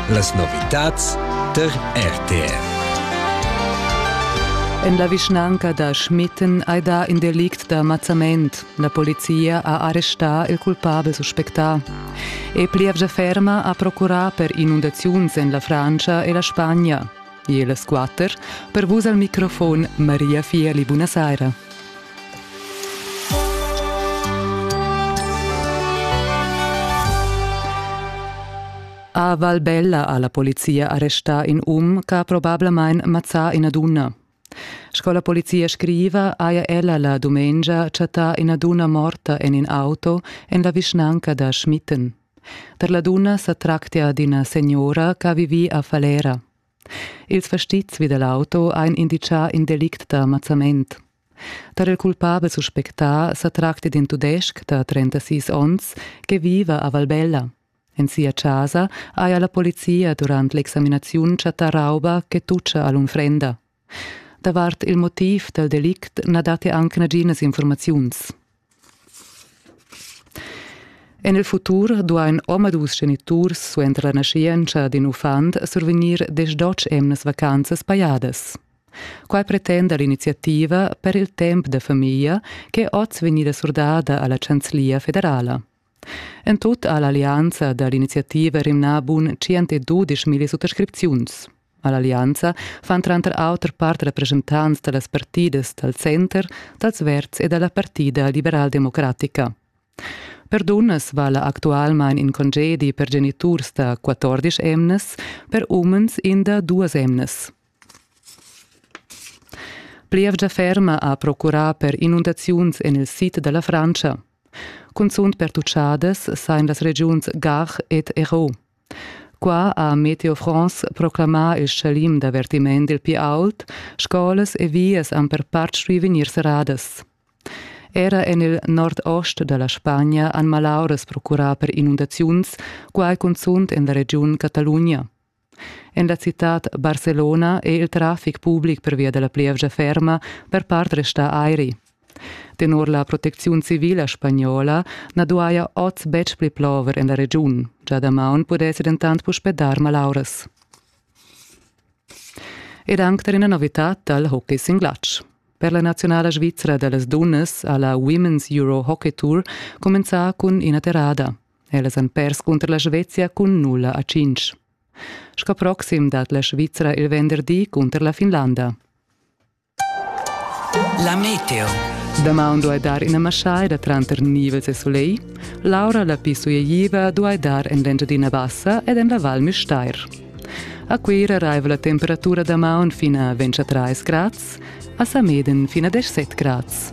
Las novitads tar RTR. En la vischnanca da Schmitten hai dà in delict da mazzament. La polizia ha arrestà il culpabel suspectà. E plievgia ferma ha procurà per inundaziuns en la Francia e la Spagna. E las quatter per vus al microfon Maria Fieli. Buonasera. A Valbella ha la polizia arrestà in um che ha probablamain mazzà ina dunna. Sco la polizia scriva, haja ella la dumengia chattà ina dunna morta en in auto en la vischnanca da Schmitten. Per la dunna sa tractia d'ina signora ch'ha vivì a Falera. Ils fastizs vi da l'auto ein inditgà in delict da mazzament. Tar il culpabel suspectà sa tracti d'in tudestg da 36 onns che viva a Valbella. En sia casa haja la polizia durant l'examinaziun chattà rauba che tuccia all'unfrenda. Davart il motiv dal delict na datti anc naginas informaziuns. En il futur duain omadus geniturs suenter la naschientscha d'in uffant survegnir desch-dotg emnas vacanzas pajadas. Quai pretenda l'iniziativa per il temp da famiglia ch'è oz vegnida surdada a la Chanzlia federala. En tut ha l'allianza da l'iniziativa rimnà bun 112 milli suttascripziuns. A l'allianza fan tranter auter part representants da las partidas dal center, dals Verds e da la partida liberaldemocratica. Per dunnas vala actualmain in congedi per geniturs da 14 emnas, per umens in da duas emnas. Plievgia ferma ha procurà per inundaziuns en il sid da la Frantscha. Cunzunt pertuchadas sain las regiuns Gard ed Hérault. Qua ha Meteo France proclamà il schalim d'avertiment il pli aut, scolas e vias han per part stuì vegnir serradas. Era en il nord-ost da la Spagna han malauras procurà per inundaziuns, quai cunzunt en la regiun Catalugna. En la citad Barcelona è il traffic public pervia da la plievgia ferma per part restà airi. Tenor la protecziun civila spagnola na duaja oz betg pli plover en la regiun. Già damaun pudessi dentant puspè dar malauras. Ed anc tar ina novitad dal hockey sin glatsch. Per la nazionala svizra da las dunnas ha la Women's Euro Hockey Tour cumenzà cun ina terrada. Ellas han pers cunter la Svezia cun nulla a cinc. Sco proxim dat la Svizzera il venderdi cunter la Finlanda. La meteo. Damaun duai dar ina maschaida tranter nivels e soleil. L'aura la più suieiva duai dar en l'Engiadina Bassa ed en la Val Müstair. A Cuira raiva la temperatura damaun fina 23 grads, a Sameden fina 17 grads.